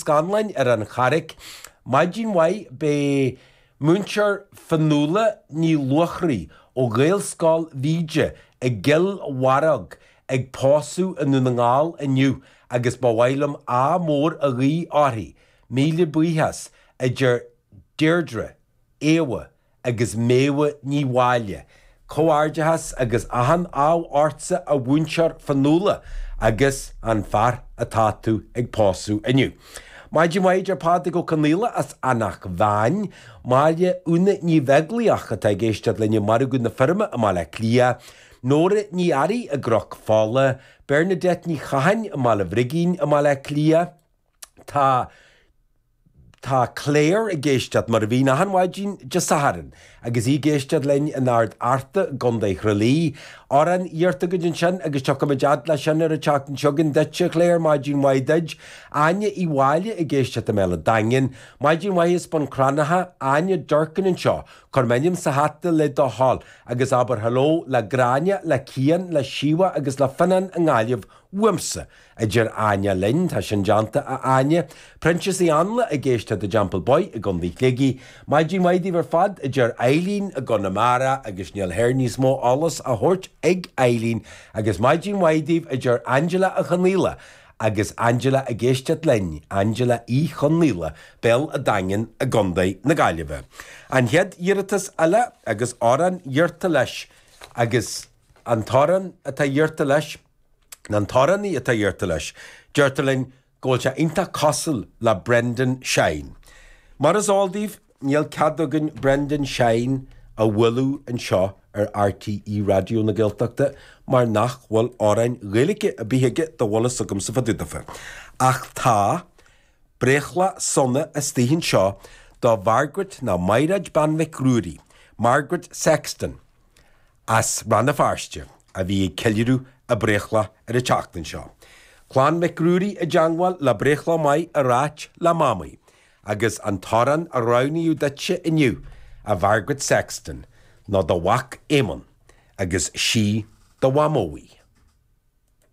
Scanláin ar an Charraig. Maidin mhaith beidh múinteoir Fionnuala Ní Luachraí ó Ghaelscoil Mhíde i gCill Bharróg ag pósadh i nDún na nGall inniu agus ba mhaith liom ádh mór a ghuí uirthi. Míle buíochas, a deir Deirdre, Éabha agus Méabha Ní Mháille. Comhghairdeachas agus achan ádh ortsa a mhúinteoir Fionnuala agus an fear atá tú ag pósadh inniu. Maidin mhaith a deir Pádraig Ó Conaola as Eanach Mheáin. Máire Úna Ní Bheaglaoich atá ag éisteacht linn i Margadh na Feirme i mBaile Átha Cliath. Nóra Ní Fhearraigh i gCnoc Fola. Bernadette Ní Chatháin i mBaile Bhrigín i mBaile Átha Cliath. Tá, tá Clare ag éisteacht, mar a bhíonn achan mhaidin Dé Sathairn, agus í ag éisteacht linn in Ard Fhearta i gContae Thrá Lí. Amhrán iarrtha agat ansin agus tiocfaimid fhad leis sin ar an tseachtain seo chugainn duit, a Clare, maidin mhaith duit. Áine Uí Mháille ag éisteacht i mBéal an Daingin. Maidin mhaith as Bun Cranncha. Áine Durkin anseo. Cuir m'ainm sa hata le do thoil agus abair hello le Gráinne, le Cian, le Síomha agus le Fionnán i nGaillimh uaimse. a deir Áine linn. Tá sin déanta, a Áine. Proinsias Uí Áinle ag éisteacht i dTeampall Boy i gContae Shligigh. Maidin mhaith daoibh ar fad, a deir Eileen i gConamara agus níl thoir níos mó eolas á thabhairt ag Eileen. Agus maidin mhaith daoibh, a deir Angela Uí Chonaola agus Angela ag éisteacht linn, Angela Uí Chonaola, Béal a' Daingean i gContae na Gaillimhe. An chéad iarratas eile agus amhrán iarrtha leis agus an t-amhrán atá iarrtha leis. Nó an t-amhránaí atá iarrtha leis, deirtear linn go bhfuil sé iontach cosúil le Brendan Shine. Mar is eol daoibh, níl cead againn Brendan Shine a bhualadh anseo ar RTÉ Raidió na Gaeltachta mar nach bhfuil amhráin Ghaeilge ar bith aige dá bhfuil a fhios agamsa fá dtaobh daofa. Ach tá breithlá sona istigh anseo do Mhargaret nó Mairéad Bean Mhic Ruairí, Margaret Sexton, as Rann na Feirste, a bhí ag ceiliúradh a breithlá ar an tseachtain seo. Clann Mhic Ruairí i dteangmháil le breithlá maith a ráit le Mamaí, agus an t-amhrán a roghnaíodh duitse inniu, A Mhargaret Sexton, ná do mhac Éamonn, agus 'Sí do Mhamó í.